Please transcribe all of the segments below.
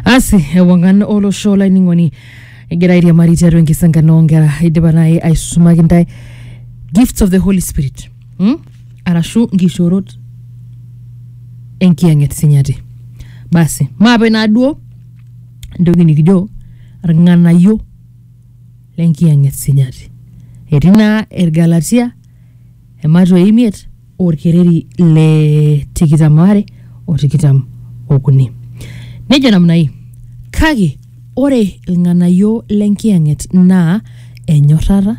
asi ewangan olosho olainining'oni egira airiamari tiatua enkisangano oonkera idipa naaji aisusumaki ntae gifts of the holy spirit hmm? arashu nkishoorot enkiyang'et sinyati basi maape naaduo entoki nikijo irng'anayio lenkiyang'et sinyati etii naa irgalatia ematwa imiet olkereri le tikitam are o tikitam okuni. Nejo namna hii, kake ore ilng'anayio lenkiyang'et naa enyorrata,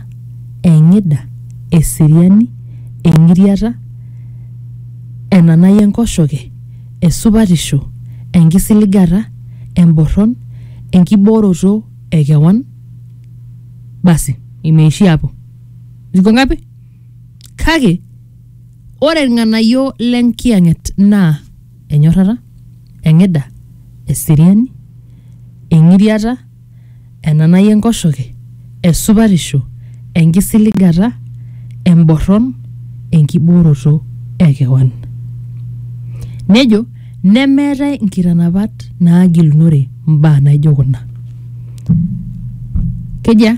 eng'ida, eseriani, eng'iriata, enanai enkoshoke, esupatisho, enkisiligata, emborron, enkibooroto e kewan. Basi, imeishia hapo. Ziko ngapi? Kake ore ilng'anayio le nkiyang'et naa enyorrata, eng'ida, eseriani, eng'iriata, enanai enkoshoke, esupatisho, enkisiligata, emborron, enkibooroto e kewan. Nejo nemeetae inkitanapat naagilunore mbaa naijo kuna. Kejia?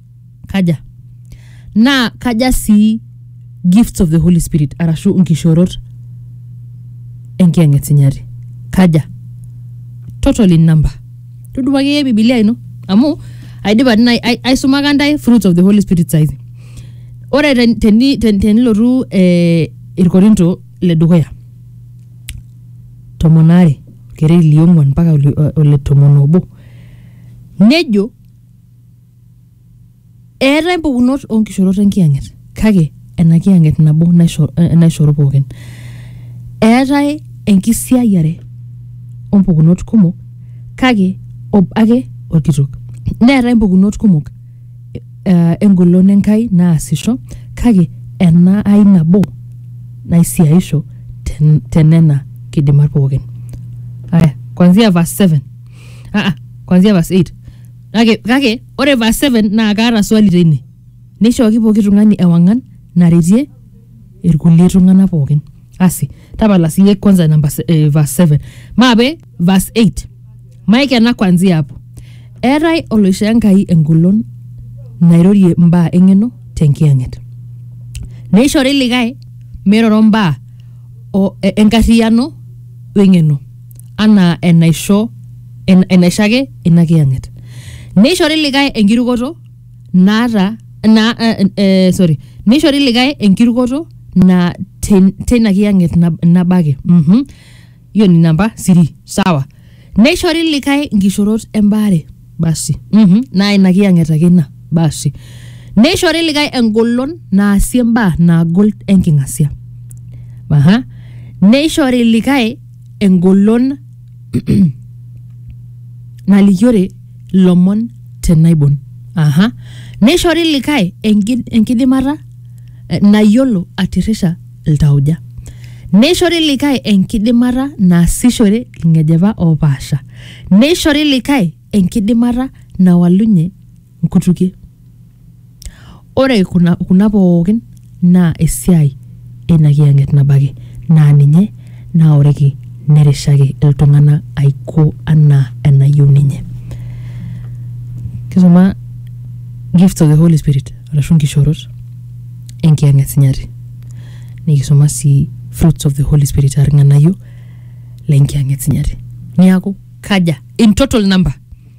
kaja naa kaja sii gifts of the holy spirit arashu nkishorot enkiyang'et sinyati kaja total in number tudumu akeyie bibilia ino amu aidipa nai- ai- aisumaka ntae fruits of the holy spirit saizi ore ten- teni- ten- tenilotu eh, irkorinto le dukuya tomon aare orkereri liong'uan mpaka ole- ole tomon obo nejo eetae mpukunot oonkishorot enkiyang'et kake ena kiyang'et nabo naisho- eh, naishoru pookin eetae enkisiayiare ompukunot kumok kake obo ake orkitok neetae impukunot kumok eh, engolon enkai naasisho kake ena ai nabo naisiaisho ten- tenena kidimat pookin aya kwanzia verse 7 aa kwanzia verse 8 Kake, kake ore verse 7 naa kaata swali teine. Neishooki pooki tung'ani ewang'an naretie irkulie tung'anak pookin. Asi, tapala siiyie kwanza namba se- eh, verse 7. Maape verse 8. Maikena kwanzia hapo. Eetae oloishoo Enkai engolon nairorie mbaa eng'eno tenkiyang'et. Neishori likae meiroro mbaa o- e- enkarriyiano weng'eno. anaa enaisho en, enaisho ake ina kiyang'et neishori likae enkirukoto naata na, eh, eh, sorry neishori likae enkirukoto na tin- tina kiyang'et nab- nabo ake mhm hiyo ni namba siri sawa neishori likae nkishorot embaare basi mhm naa ina kiyang'et ake ina basi neishori likae engolon naasie mbaa naagol enking'asia aha neishori likae engolon nalikiore ilomon te naibon. Aha. Neishori likae enki- enkidimata eh, nayiolo atirrisha iltauja. Neishori likae enkidimata naasishore ilng'ejepa oopaasha. Neishori likae enkidimata nawalunye nkutukie. Ore kuna kuna pookin naa esiai eina kiyang'et nabo ake naa ninye naoriki nerishaki iltung'anak aiko anaa enayieu ninye. Kisuma gifts of the Holy Spirit arashu nkishorot enkiyang'et sinyati. Nikisuma sii fruits of the Holy Spirit aa irng'anayio le nkiyang'et sinyati. Niaku kaja in total number?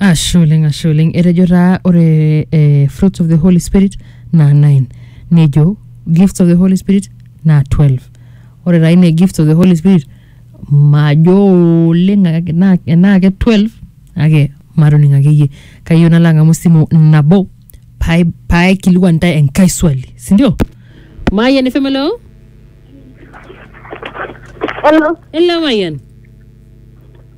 Ashe oleng, ashe oleng. Etejo taa ore eh, fruits of the Holy Spirit naa 9. Nejo gifts of the Holy Spirit naa 12. Ore taa ine gifts of the Holy Spirit majo oleng ake- naa- enaa ake 12 kake matoning akeyie. Kayieu nalo ang'amu esimu nabo pae- paikilikuan intae enkae swali. Sindio? Mayian FM hello? Hello. Hello Mayian.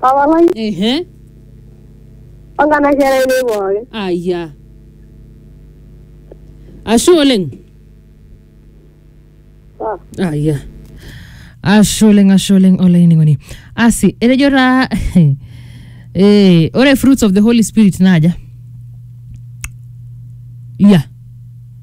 Papa lai, ehe ongana kera ene pooki. aya ashe oleng Sawa. aya ashe oleng ashe oleng olainining'oni asi etejo taa eh, ore fruits of the holy spirit naaja ya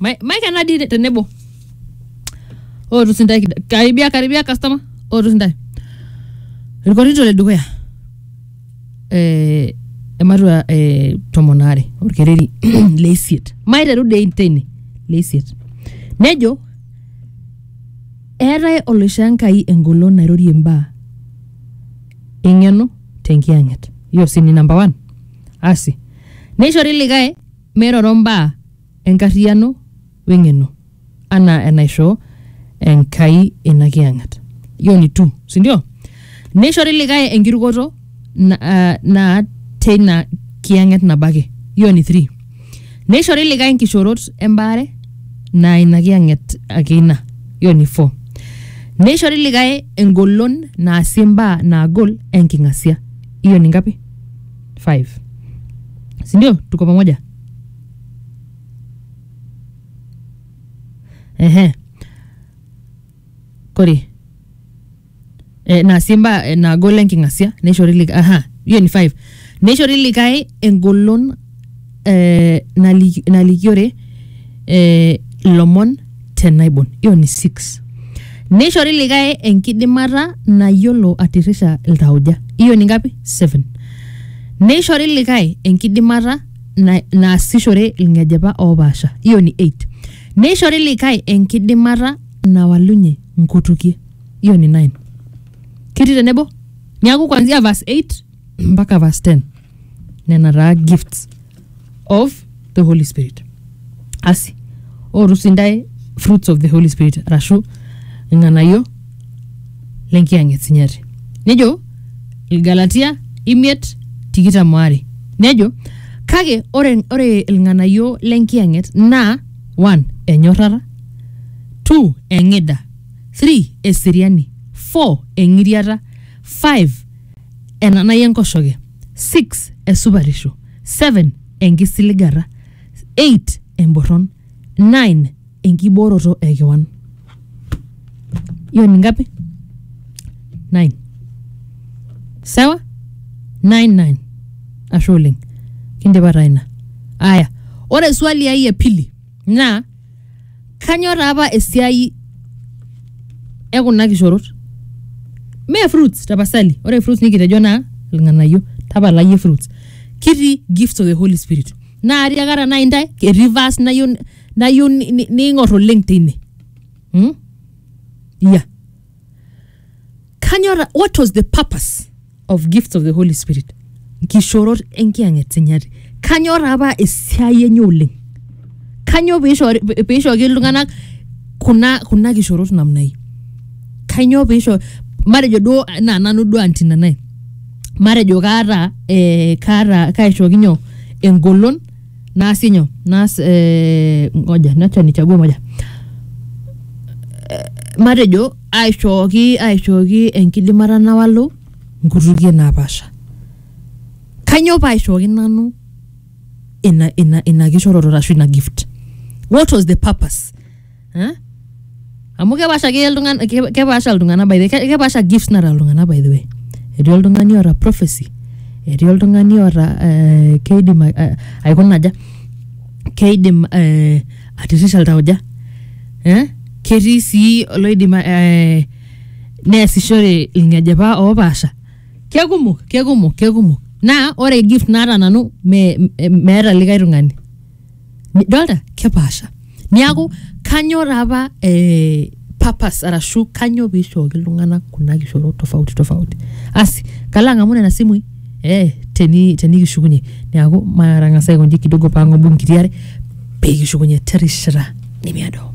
Ma- Mike anadi te- tenebo. Ootu sintae kida- karibia karibia customer. Ootu sintae. Irkorito le dukuya. Eh, ematua eh, tomon aare orkereri le isiet. Maiteru dei teine le isiet. Nejo eetae oloisho Enkai engolon nairorie imbaa eng'eno tenkiyang'et. Hiyo si ni number one. Asi. Neishori likae meiroro mbaa enkarriyiano weng'eno anaa enaisho Enkai ina kiyang'et. Hiyo ni tu, si ndio? Neishori likae enkirukoto na, ah, naa teina kiyang'et nabo ake. Hiyo ni three. Neishori likae nkishorot embaare naa ina kiyang'et ake ina. Hiyo ni four. Neishori likae engolon naasie mbaa naagol enking'asia. Hiyo ni ngapi? Five. Si ndio? Tuko pamoja? ehe kore eh, naa sii mbaa eh, naagol enking'asia neishori likae aha hiyo ni five neishori likae engolon eh, nali- nalikiore eh, lomon te naibon hiyo ni six neishori likae enkidimata nayiolo atirrita iltauja hiyo ni ngapi seven neishori likae enkidimata na- naasishore ilng'ejepa oopaasha hiyo ni 8 neishori likae enkidimata nawalunye nkutukie hiyo ni 9 ketii tenebo niaku kwanzia verse 8 mpaka verse 10 nena taa gifts of the holy spirit asi ootu sii intae fruits of the holy spirit arashu irng'anayio lenkiyang'et e sinyati nejo ilgalatia imiet tikitam oare nejo kake ore, ore ilng'anayio lenkiyang'et naa one enyorrata two eng'ida three eseriani four eng'iriata five enanai enkoshoke six esupatisho seven enkisiligata 8 emborron 9 enkibooroto e kewan hiyo ni ngapi 9 sawa 9 9 ashe oleng kindipa taa ina aya ore swali ai e pili naa kanyo taa apa esiai e kuna kishorot mee fruits tapasali ore fruits nikitejo naa ilng'anayio tapala iyie fruits kitii gifts of the holy spirit naa tiakata nai intae etii verse nayieu n- nayieu ni- ni- niing'or oleng tine hmm? yeah. kanyor what was the purpose of gifts of the holy spirit nkishorot enkiyang'et sinyati kanyor apa esiai enye oleng kanyo piishori- piishooki iltung'anak kuna kuna kishorot namna hii kanyoo piisho matejo duo naa nanu duo anti nanae matejo kaata eh, kaata kaishooki nyoo engolon naasie nyoo naas eh, ngoja nacha nichague moja matejo aishooki aishooki enkidimata nawalu nkutukie napaasha kanyoo paaishooki nanu ina ina ina kishoroto ashu ina gift what was the purpose Eh? amu kepaasha ake iltung'ana ke- kepaasha iltung'ana by the ke- kepaasha gifts naata iltung'ana by the way etii oltung'ani oota prophecy etii oltung'ani oota eh, keidim a- a- aikuna aja keidim eh, atirisha iltauja eh? ketii sii oloidim eh, neesishore ilng'ejepa oopaasha kekumok kekumok kekumok naa ore gift naata nanu me- me- meeta likae tung'ani Ni- dolta kepaasha niaku kanyo taapa eh, purpose arashu kanyo piishooki iltung'anak kuna kishorot tofauti tofauti asi kalo ang'amu nena simui eh, teni tenikishukunye niaku matang'asa aikonji kidogo pang'obu nkiti are pekishukunye terishata nemiado